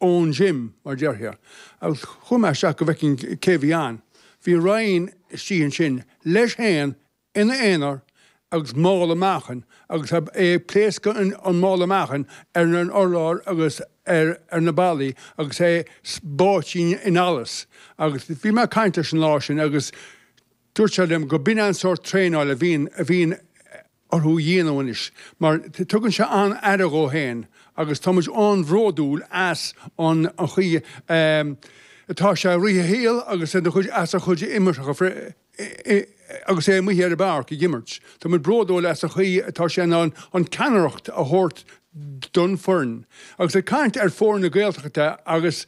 ón gym, mar déarfá, agus chuaigh mé isteach go bhfeicfinn cé a bhí ann. Bhí Ryan istigh ansin, leis féin, ina aonar, agus mála meáchain, agus é ag pléascadh an mála meáchain ar an urlár agus ar na ballaí agus é báite in allas. Agus bhí mé ag caint leis an lá sin agus dúirt sé liom go b'in an sórt traenáil a bhíonn orthu a dhéanamh anois mar tugann sé an-aire dhó féin agus tá muid an-bhródúil as an chaoi atá sé ag rith a shaol agus as a chuid imeartha agus é amuigh ar an bpáirc ag imirt. Tá muid bródúil as an chaoi atá sé in ann an ceannaireacht a thabhairt don foireann. Agus ag caint ar foirne Gaeltachta agus.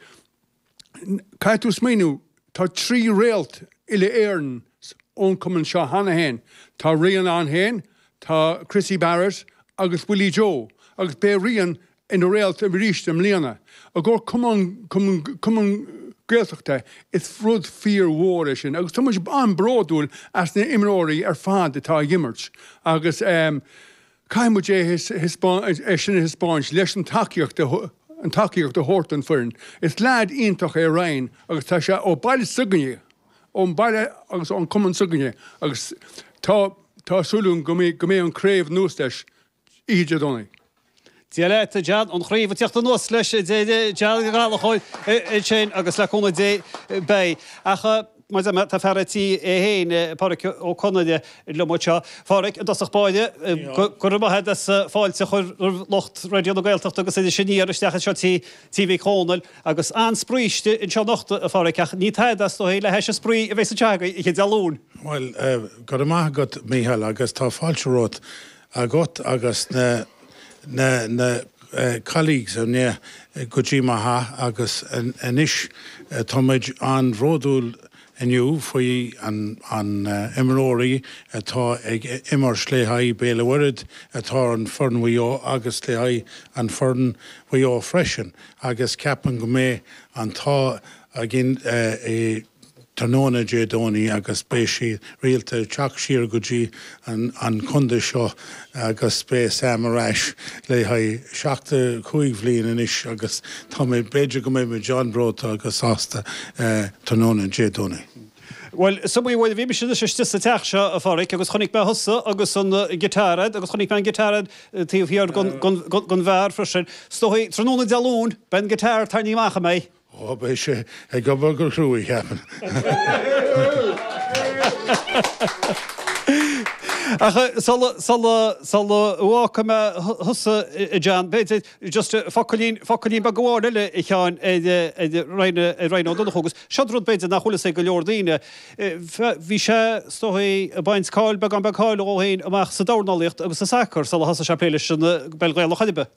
Caithfidh tú smaoiniú, tá trí réalt uile Éireann ón cumann seo cheana féin, tá Ryan ann féin, tá Chrissie Barrett agus Willie Joe, agus beidh Ryan ina réalt arís i mbliana. I gcomhair cumann Gaeltachta is rud fíor mhór é sin agus tá muid an-bródúil as na himreoirí ar fad atá ag imirt agus Caithfidh muid é sin a thaispeáint leis an tacaíocht a thabhairt don foireann. Is leaid iontach é Ryan agus tá sé ó baile s'againne, ón baile agus ón cumann s'againne agus tá súil againn go mbeidh an craobh anuas leis oíche Dé Domhnaigh. Dia leat, John. An chraobh ag teacht anuas leis Dé Domhnaigh, John Gallachóir ansin agus le cúnamh Dé beidh. Mar a dúirt mé, tá fear an tí é féin, Pádhraic Ó Conaire, liom anseo. Pádhraic, i dtosach báire, go raibh maith agat as an fáilte a chur ar lucht Raidió na Gaeltachta agus Iris Aniar isteach anseo i Tí Mhic Dhónaill. Agus an-spraoi istigh anseo anocht, a Phádhraic, ach ní tada é is dóigh le hais an spraoi a bheas sa teach agat oíche Dé Luain. Bhuel, go raibh maith agat, Micheál, agus tá fáilte romhat agat agus na, na, na colleagues ar ndóigh go dtí mo theach agus anois tá muid an-bhródúil inniu faoi an, an imreoirí atá ag imirt le haghaidh Béal an Mhuirthead atá ar foireann Mhaigh Eo agus le haghaidh an foireann Mhaigh Eo freisin agus ceapaim go mbeidh an t-ádh againn tráthnóna Dé Domhnaigh agus beidh sé rialta ag teacht siar go dtí an contae seo agus beidh Sam ar ais le haghaidh seachtó cúig bhliain anois agus tá mé b'fhéidir go mbeidh muid an-bhreoite agus sásta tráthnóna Dé Domhnaigh. Bhuel, is iomaí uair a bhí mise istigh sa teach seo, a Pháraic, agus chonaic mé thusa agus an guitar ad agus chonaic mé an guitar ad taobh thiar den bheár freisin. Is dóigh, tráthnóna Dé Luain, beidh an guitar tarraingthe amach, an mbeidh? Oh, beidh sé ag obair go cruaidh, ceapaim. Ach sula bhfágfaidh mé thusa, a John, b'fhéidir, just focailín, focailín beag amháin eile, a Sheáin, ar Ryan Ó Donnchú, agus seo'd rud, b'fhéidir, nach bhfuil fhios ag go leor daoine. Bhí sé, is dóigh, ag baint cáil, beagán beag cáil dhó fhéin, amach sa dornálaíocht agus sa sacar, sula thosaigh sé ag plé leis an bPeil Ghaelach, an ea?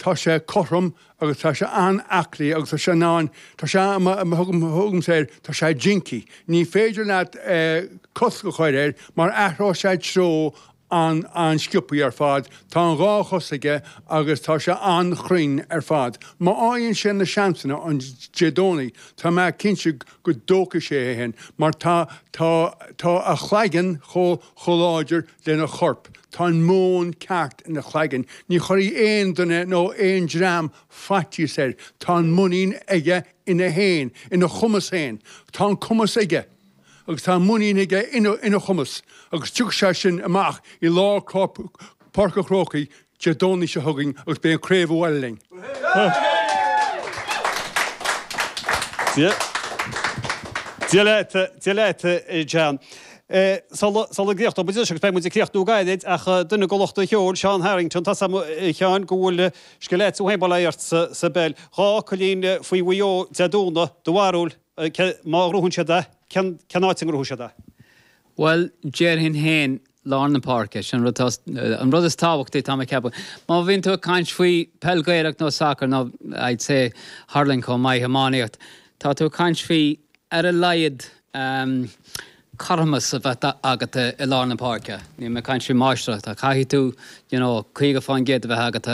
Tá sé cothrom agus tá sé an-aclaí agus tá sé in ann, tá sé, thugaimse air, tá sé jinky. Ní féidir leat cosc a chur air mar athróidh sé treo an-sciopthaí ar fad. Tá an dhá chos aige agus tá sé an-chruinn ar fad. Má fhaigheann sé na seansanna ann Dé Domhnaigh, tá mé cinnte go dtógfaidh sé é féin mar tá, tá, tá a chlaigeann chomh láidir lena chorp. Tá an meon ceart ina chlaigeann. Ní chuirfidh aon duine nó aon dream faitíos air. Tá an mhuinín aige ina fhéin, ina chumas fhéin. Tá an cumas aige agus tá an mhuinín aige ina chumas agus tiocfaidh sé sin amach i lár Páirc an Chrócaigh Dé Domhnaigh seo chugainn agus beidh an craobh abhaile linn. Dia leat, Dia leat, a John. Sula gcríochnóidh muid anois agus beidh muid ag críochnú gairid ach duine de lucht an cheoil, Seán Harrington, tá 's agam a Sheáin go bhfuil scil an-mhaith agat sa bpeil. Dhá fhocailín faoi Mhaigh Eo Dé Domhnaigh, do bharúil má ghnóthaíonn siad é, cén áit a ngnóthóidh siad é? Bhuel, déarfainn féin lár na páirce. Sin é an rud is tábhachtaí táim ag ceapadh. Má bhíonn tú ag caint faoi peil Gaelach nó sacar nó I'd say hurling chomh maith, iománaíocht, tá tú ag caint faoi ar a laghad ehm cothromas a bheith agat i lár na páirce. Níl mé ag caint faoi máistreacht. Caithfidh tú you know caoga fán gcéad a bheith agat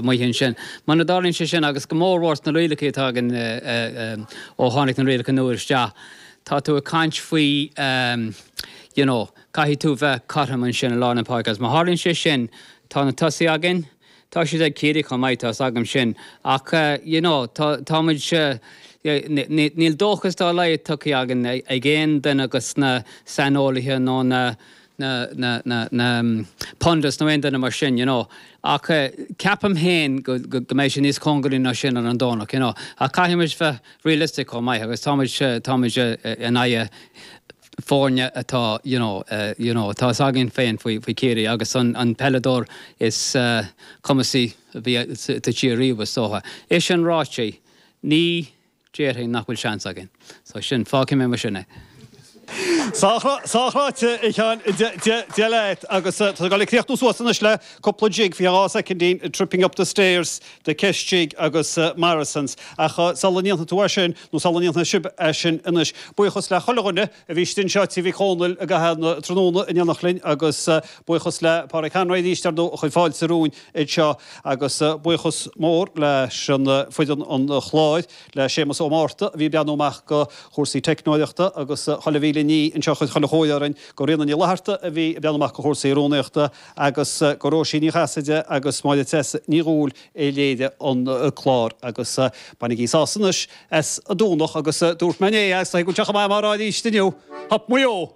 amuigh ansin. Muna dtarlaíonn sé sin agus go mór mhór sna rialacha atá againn ó tháinig na rialacha nua isteach, tá tú ag caint faoi ehm you know, Caithfidh tú bheith cothrom ansin i lár na páirce agus má tharlaíonn sé sin, tá na tosaithe againn, tá siad ag Ciarraí chomh maith, tá 's agam sin, ach you know tá, tá muid, níl dóchas dá laghad tugtha dhúinn ag aon duine de na saineolaithe nó na, na, na, na, na pundits nó aon duine mar sin you know. Ach ceapaim féin go, go, go mbeidh sé níos cóngaraí ná sin ar an Domhnach you know. Ach caithfidh muid bheith realistic chomh maith agus tá muid, tá muid in aghaidh, foirne atá you know you know atá s'againn féin faoi faoi Chiarraí agus an an peileadóir is cumasaí a bhí sa tír riamh is dócha. É sin ráite, ní déarfainn nach bhfuil seans againn. So sin, fágfaidh mé mar sin é. Sách ráite, a Sheáin, Dia leat. Agus tá gá le críochnú suas anois le cúpla jig, fiche dhá soicindín, Tripping Up The Stairs, The Kesh Jig agus Morrison's. Ach sula ndéanfaidh tú é sin, Nó sula ndéanfaidh sibh é sin anois. Buíochas le chuile dhuine a bhí istigh anseo Tigh Mhic Dhónaill i gcaitheamh an tráthnóna in éineacht linn, agus buíochas le Páraic Hanrahy arís ar a chuid fáilte romhainn anseo. Agus buíochas mór le foireann an chláir, le Séamus Ó Márta a bhí ag breathnú amach go chúrsaí teicneolaíochta, agus chuile mhíle duine anseo a chuir chuile chóir orainn, go Ríona Ní Fhlatharta a bhí ag breathnú amach go chúrsaí rúnaíochta, agus go Róisín Ní Chasaide agus Máire Treasa Ní Dhúill a léirigh an clár agus bainigí sásamh anois as an Domhnach agus dúirt mé inné agus tá ag bhaint amach go maith mar fháil aríst inniu. Hup Maigh Eo!